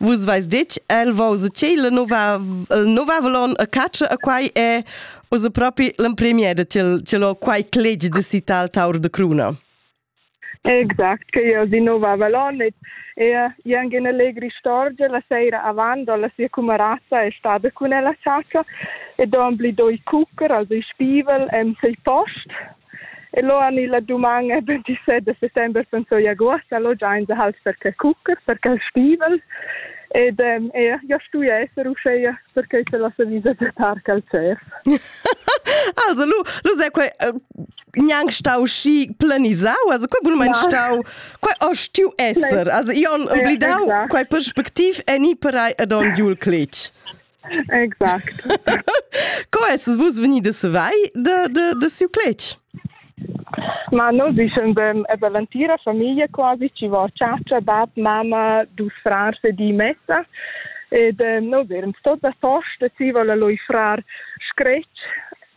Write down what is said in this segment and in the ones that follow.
Vus vais ditg, el vo se chi la nova nova valon a caccia a quai e us a propi l'empremier da til til ho quai cleg de citar al taur de cruna. Exact, che io di Nova Valonit e jan in allegri storgia la seira avant la sia cumarazza è stada cun ella ciaccia e don bli doi cuccer, also i spivel, em sei post E lo han illa duman e 27 de settember pensoi agost allo giain de halt per che cuccher, per che stivel. Ed ähm, ja, ja stui esser uscheia perché c'è la sevisa de tarca al CEF. also lu lu sei quei uh, gnanc stau schi planisau, also quei bun mein stau quei o stiu esser, also ion oblidau quei perspectiv eni per ai ad on Jul Cletg. Exact. Co esses vus venidas vai de, de, de siu cletg? Ma noi dicen bem, è l'antira famiglia quasi ci va ciacia, bab, mamma, dus frars e di messa. Ed eh, noi eram stot da posta, ci vola lui frar scretg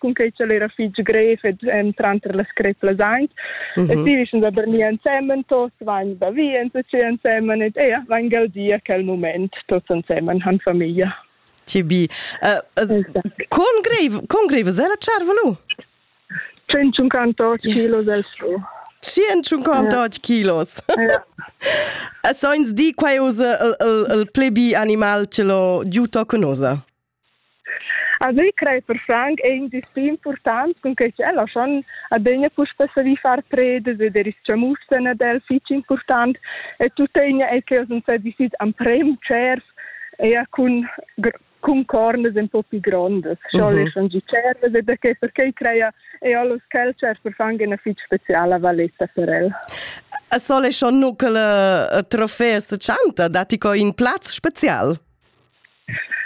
cunquei ch'el era fitg grev ed entrant per las creplas aint. Mm -hmm. E ti vischen da Berni ensemen, tos vain da vi enzatgi ensemen ed ea vain gaudia quel moment, tots ensemen han famiglia. Tibi, uh, con grev, con grev es ella charvelu? 158 yes. kilos el su. 158 kilos. Ja. A soins di quai usa il, il, il plebi animal ce lo giuto conosa. Also ich crei per franc ei in distri important cun che ella schon adegna puspei savi far predes ed er is mussen ad el fitg important e tuttegna ei che oz sa visit am prem tschers e cun cun cornas un po più grondas. Schon mm -hmm. schon gi cerves e da che perché crea e allos cultures per fang una fitg speciala valetta per el. A sole schon nu che le trofee se chanta, dati co in plaz special.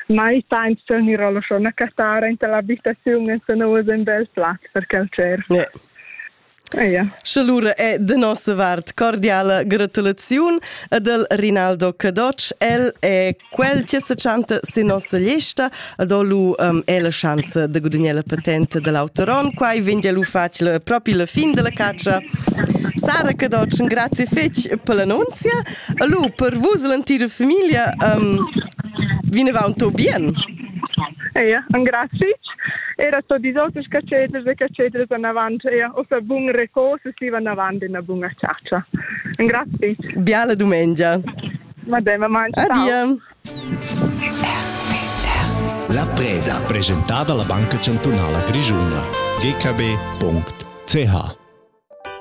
mai sainza ir alla schona cattara in la abitaziun e se nous un bel plat per quel cer. Yeah. Ja. Sche lura è de nossa vart cordiala gratulaziun ad el Rinaldo Cadoc. El è quel che se chanta sin nossa lista, ad lu um, è la chance de gudagnare la patente dell'autoron. Quai vende lu facile proprio la fin della caccia. Sara Cadoc, grazie fetch per l'annunzia. Hallo, per vus l'entira famiglia um, vinavant tot bien? Ja, engrazi. Era tot die auters cateders e cateders anavant, ja, o sa bun recors e si anavant in una buna charcia. Engrazi. Biala domenica. Madame, man. Adia. La preda presentata alla Banca Cantunala Grigiuna. gkb.ch